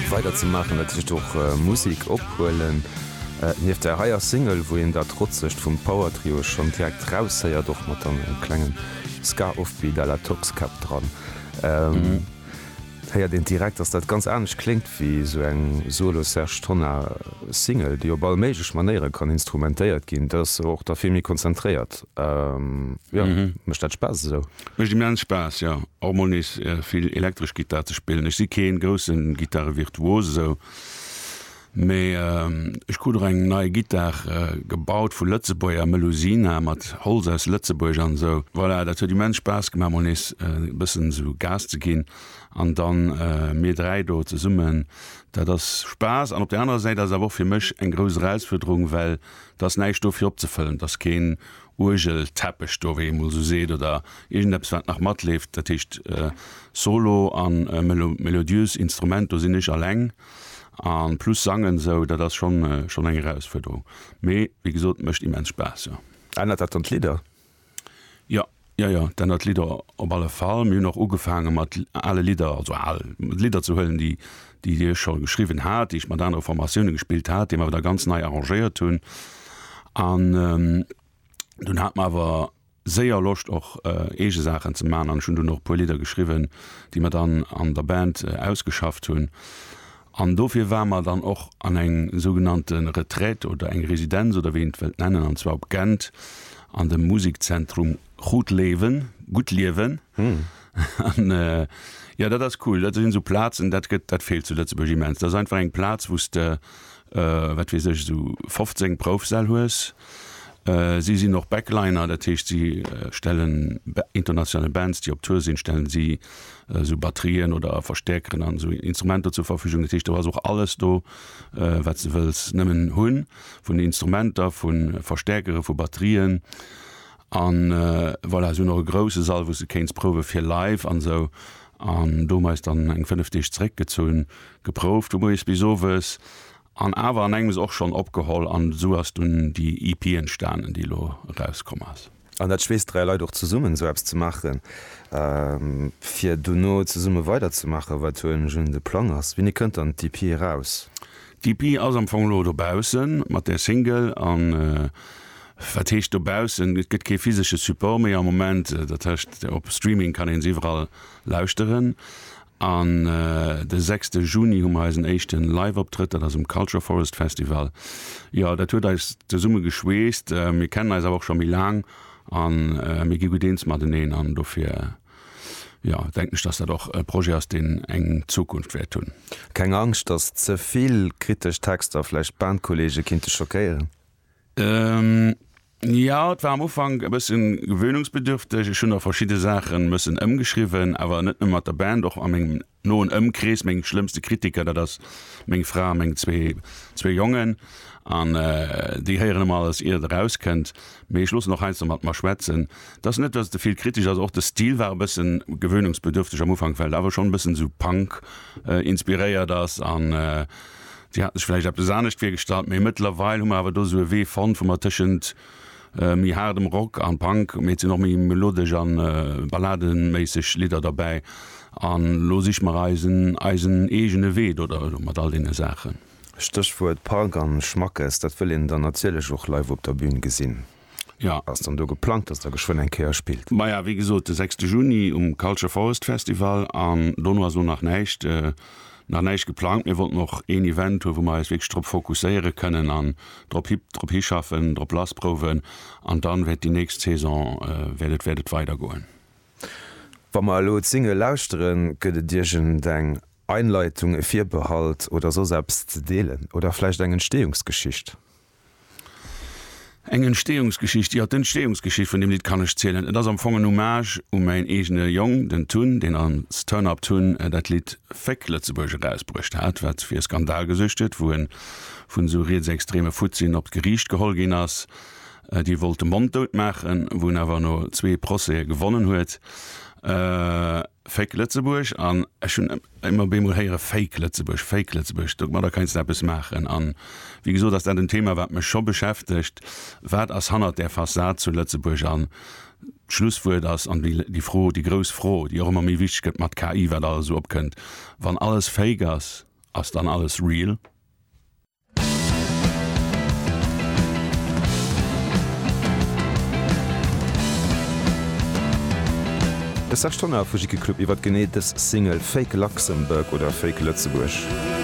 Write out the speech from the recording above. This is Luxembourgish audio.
Weider ze maachen, dat heescht och Musik ophuelen. Nieft der heier Single, wou een dat Trotzegt vum Power Trio schonn direkt raushéiert, och mat engem klengen Ska-Offbeat à la Toxkäpp dran, héiert een direkt, dass dat ganz anescht kléngt wéi esou eng Solo-Serge Tonnar Single, déi op all méiglech Manéiere kann instrumentéiert ginn. Dat ass och da vill méi konzentréiert. Jo, mécht dat Spaass esou. Mécht immens Spaass, jo och mol nees vill elektresch Gittar ze spillen. Ech si kee grousse Gittarëvirtuos esou, mee ech krut och eng nei Gittar gebaut vu Lëtzebuerger, Melusina mat Holz aus Lëtzebuerg an esou. Voilà, dat huet immens Spaass gemaach mol nees e bëssen esou Gas ze ginn an dann mir dräi do zesummen, dat ass Spaass an op der anerer Säit ass et awer och fir mech eng grouss Erausfuerderung, well et ass näischt do fir opzefëllen, et ass keen Uergelteppech do, wéi ee mol esou seet, oder iergendeppes wat nach matleeft, dat heescht Solo a melodiös Instrument, do sinn ech alleng an plus sangen esou, dat ass schonn schonn eng Erausfuerderung, mee wéi gesot mécht immens Spaass, jo. Ännert dat dann d'Lidder? Jo, jo, jo, et ännert d'Lidder op alle Fall. Mir hunn och ugefaange mat ale Lidder, also al Lidder ze huelen, déi déi ech scho geschriwwen hat, déi ech mat anere Formatioune gespillt hat, déi mer awer da ganz nei arrangéiert hunn. An dunn hat mer awer séier Loscht och eege Saachen ze maachen an ech hunn dunn och e puer Lidder geschriwwen, déi mer dann an der Band ausgeschafft hunn. An dofir ware mer dann och an eng sougenannte Retraite oder eng Residenz oder wéi een et wëllt nennen, an zwar op Gent an dem Musikzentrum. Goed Leven, Gutt Liewen. An jo, dat ass cool. Dat sinn esou Plazen, dat gëtt, dat feelt zu Lëtzebuerg immens. Dat ass einfach eng Plaz, wou s de, wat weess ech, esou 15 Proufsäll hues. Si sinn och Backliner, dat heescht, si stellen international Bands, déi op Tour sinn, stellen si esou Batterien oder Verstäerkeren an esou Instrumenter zur Verfügung. Dat heescht, do ass och alles do, wat s de wëlls nëmmen hunn, vun Instrumenter, vu Verstäerkere, vu Batterien. An voilà, se hunn och e grousse Sall, wou s de kéints prouwe fir live an esou. An do hu mer eis dann eng fënnef Deeg zeréckgezunn, geprouft vu moies bis owes an awer an engems och schonn opgeholl. An esou ass dunn déi EP entstanen, déi elo erauskomm ass. An dat schweesst dräi Leit och zesummen, esou eppes ze maachen, fir dono zesumme weiderzemaachen. Wat elo nämlech de Plang ass, Wéini kënnt dann d'EP eraus? D'EP ass am Fong elo dobaussen, mat där Single an Wat heescht dobaussen? Et gëtt kee physesche Support méi am Moment. Dat heescht, op Streaming kann ee se iwwerall lauschteren. An de sechste Juni hu mer eisen éischte Live-Optrëtt, dat ass um Culture Forest Festival. Jo, dat huet eis zesumme geschweesst. Mir kennen eis awer och scho méi laang a mir gi gutt eens mateneen. An dofir, jo, denken ech, datt dat och e Projet ass, deen eng Zukunft wäert hunn. Keng Angscht, datt ze vill kritesch Texter vläicht d'Bandkolleege kinnte schockéieren? Jo, et war am Ufank e bëssen gewöhnungsbedürfteg. Ech hunn nach verschidde Saache mëssen ëmgeschriwwen, awer net nëmme mat der Band, och a mengem noen Ëmkrees. Meng schlëmmste Kritiker, dat ass meng Fra a meng zwee zwee Jongen. An déi héieren ëmmer alles, ier et erauskënnt. Mee ech loossen och heiansdo mat mer schwätzen. Et ass net, datt et de vill kritesch ass. Och de Stil war e bëssen gewöhnungsbedürfteg am Ufank, well et awer schonn e bëssen esou Punk inspiréiert ass. An Déi haten sech vläicht eppes anescht virgestallt, mee mëttlerweil hu mer awer do esou e Wee fonnt, wou mer tëschent méi haardem Rock an Punk, mee et sinn och méi melodesch an ballademéisseg Lidder derbäi, an elo siche mer eisen eisen eegene Wee do der mat all deene Saachen. Stéchwuert Punk an Schmackes, dat wëll een dann natierlech och live op der Bühn gesinn. Jo. Ass dann do geplangt, dass Der geschwënn eng Kéier spillt? Maja, wéi gesot, de sechste Juni um Culture Forest Festival an dono ass elo nach näischt, nach näischt geplangt. Mir wollten och een Event hunn, wou mer eis wierklech drop fokusséiere kënnen an drop hi, drop hischaffen, drop lassprouwen an dann wäert déi nächst Saison, wäert et, wäert et weidergoen. Wa mer elo d'Single lauschteren, gëtt et iergendeng Einleitung, e Virbehalt oder soss eppes ze deelen? Oder vläicht eng Entstehungsgeschicht? Eng Entstehungsgeschicht, jo, d'Entstehungsgeschicht vun deem Lidd kann ech zielen. Et ass am Fong en Hommage u mäin eegene Jong, den Tun, deen als Turn Up Tun dat Lidd Féck Lëtzebuerg erausbruecht hat, wat fir Skandal gesuergt huet, wou e vun esou rietsextreme Futtien op d'Geriicht geholl ginn ass, déi wollte monddout maachen, wou en awer no zwee Procèse gewonnen huet. Fake Lëtzebuerg an ech hunn ëmmer op eemol héiere Fake Lëtzebuerg, Fake Lëtzebuerg, domadder keinst de eppes maachen. An wéi gesot ass dat en Thema, wat mech scho beschäftegt, Wat ass hannert där Fassad zu Lëtzebuerg? An d'Schlusswuert ass, an déi Fro, déi grouss Fro, déi och ëmmer méi wichteg gëtt mat KI, wat alles esou opkënnt, Wann alles Fake ass, ass dann alles real? De Serge Tonnar vu Jicky Club iwwert genee dës Single Fake Luxembourg oder Fake Lëtzebuerg.